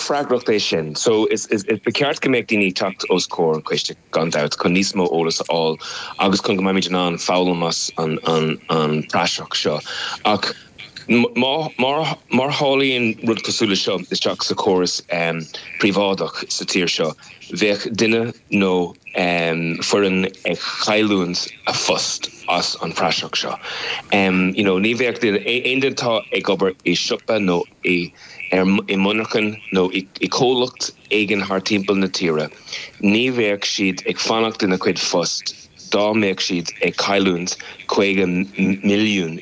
freagracht é sin so ba cheart go mbeadh daoine ag teacht os comhair an coiste gan dabht chun níos mó eolas a fháil agus chun go mbeimid in ann foghlaim as an praiseach seo ach má tharlaíonn rud cosúil le seo isteach sa chóras príobháideach sa tír seo bheadh duine nó foireann ag chailliúint a phost as an praiseach seo you know ní bheadh aon duine atá ag obair i siopa nó i i monarchan nó i comhlacht éigin thar timpeall na tíre, ní bheadh siad ag fanacht ina gcuid phost dá mbeadh siad ag cailliúint €50 milliún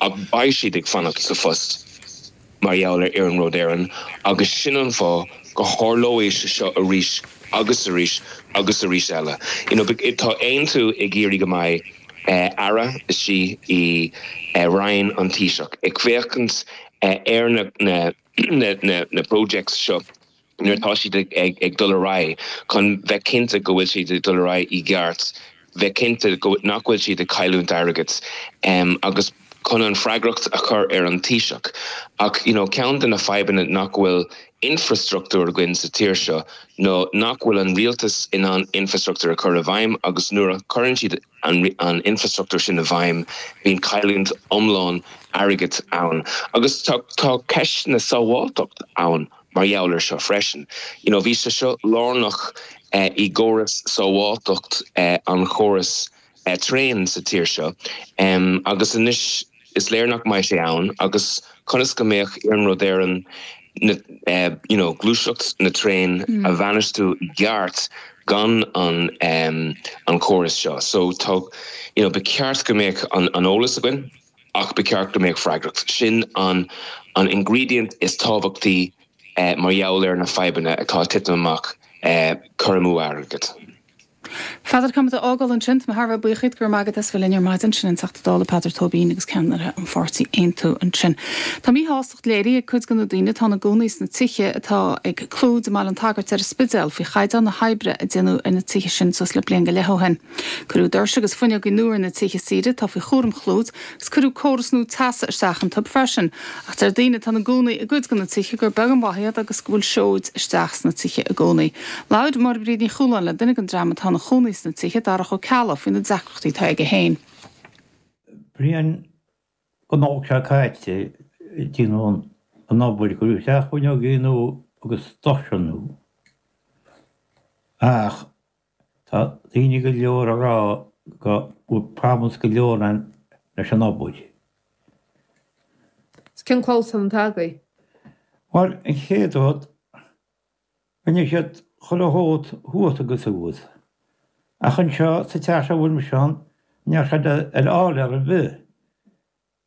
ach beidh siad ag fanacht sa phost mar gheall ar Iarnród Éireann agus sin an fáth go tharlóidh sé seo arís agus arís agus arís eile. You know tá Aontú ag iarraidh go mbeidh Aire CEO i Roinn an Taoiseach, ag féachaint ar na projects seo nuair atá siad ag dul ar aghaidh chun bheith cinnte go bhfuil siad ag dul ar aghaidh i gceart, bheith cinnte nach bhfuil siad ag cailliúint airgid agus chun an freagracht a chur ar an Taoiseach. Ach you know ceann de na fadhbanna nach bhfuil infreastruchtúr againn sa tír seo nó nach bhfuil an rialtas in ann infreastruchtúr a chur i bhfeidhm agus nuair a chuireann siad, an infrastruchtúr sin i bhfeidhm, bíonn cailliúint iomlán airgid ann. Agus tá ceisteanna sábháilteacht ann mar gheall ar seo freisin. You know, bhí sé seo lárnach i gcóras sábháilteacht an chóras traen sa tír seo agus anois, Is léir nach mbeidh sé ann agus conas go mbeadh Iarnród Éireann na you know gluaiseacht na traen a bhainistiú i gceart gan an an córas seo so tá you know ba cheart go mbeadh an an eolas againn ach ba cheart go mbeadh freagracht sin an an ingredient is tábhachtaí mar gheall ar na fadhbanna atá titim amach cur amú airgead. Peadar caithfidh muid é a fhágáil ansin. Táim thar a bheith buíoch díot go raibh maith agat as bheith linn ar maidin. Sin an Teachta Dála Peadar Tóibín agus ceannaire an pháirtí Aontú ansin. Tá míshástacht léirithe ag cuid de na daoine atá ina gcónaí sna tithe atá ag Clúid i mBaile an tSagairt ar an Spidéal faoi chaighdeán na hoibre a déanadh ar na tithe sin suas le bliain go leith ó shin. Cuireadh doirse agus fuinneogaí nua ar na tithe siar atá faoi chúram Chlúid 's cuireadh córas nua teasa isteach iontub freisin. Ach deir daoine atá ina gcónaí i gcuid go na tithe gur beag an mhaith iad agus go bhfuil siota isteach sna tithe i gcónaí. Labhair Máire-Bríd Ní Chualáin le duine den dream atá ina chónaí sna tithe, Darach Ó Ceallaigh, faoi na deacrachtaí atá aige féin. Bliain nó dhó seo caite déanadh an obair cuireadh isteach fuinneogaí nua agus doirse nua. Ach. Tá daoine go leor ag rá go bhfuil problems go leor ann leis an obair. Is cén clamhsán atá agaibh? Bhuel, an chéad rud, rinne siad chuile shórt thuas agus abhus. Ach anseo sa teach seo a bhfuil mise ann, níl sé de ar fáil ar bith.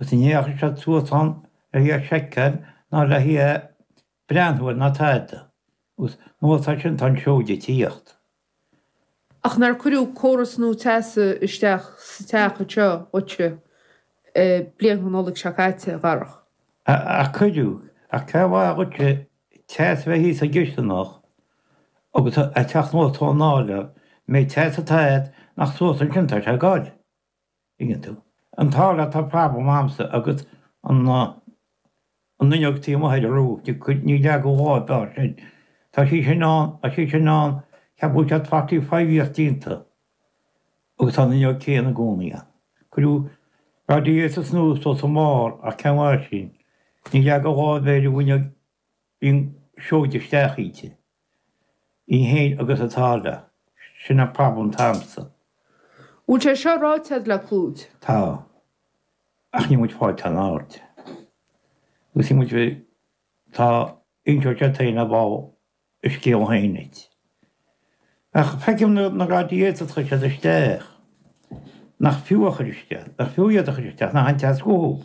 Agus ní dheachaigh siad suas ann le hí a sheiceáil ná le hí a breathnú air ná tada. Agus anuas ar sin tá an seoide ag tíocht. Ach nár cuireadh córas nua teasa isteach sa teach anseo dhuit bliain an Nollaig seo caite, a Dharach? Ach cuireadh. Ach cén mhaith dhuitse teas a bheith thíos sa gcisteanach agus an teach nuair atá an áiléar. An méid teas atá agat nach suas ansin atá sé ag gabháil? Tuigeann tú. An t-áiléar tá problem agamsa agus an fhuinneog taobh amuigh ar a rúid. Níor leagadh lámh ar bith air sin. Tá sí sin ann, tá sí sin ann, ceapaim go bhfuil sé twenty five years déanta agus tá an fhuinneog céanna i gcónaí ann. Cuireadh radiators nua sa seomra ach cén mhaith sin. Níor leagadh lámh ar bith ar an bhfuinneog Bhí an seoid isteach inti. Ní théid agus an t-áiléar. Sin an problem atá agamsa. Bhfuil sé seo ráite agat le Clúid? Tá. Ach níl muid ag fáil aon aird. Agus níl muid ag tá inseoidh sé féin ar ball a scéal féin duit. Ach feicim na na radiators a chuir siad isteach. Nach fiú a chuir isteach. Nach fiú iad a chuir isteach níl aon teas uathub.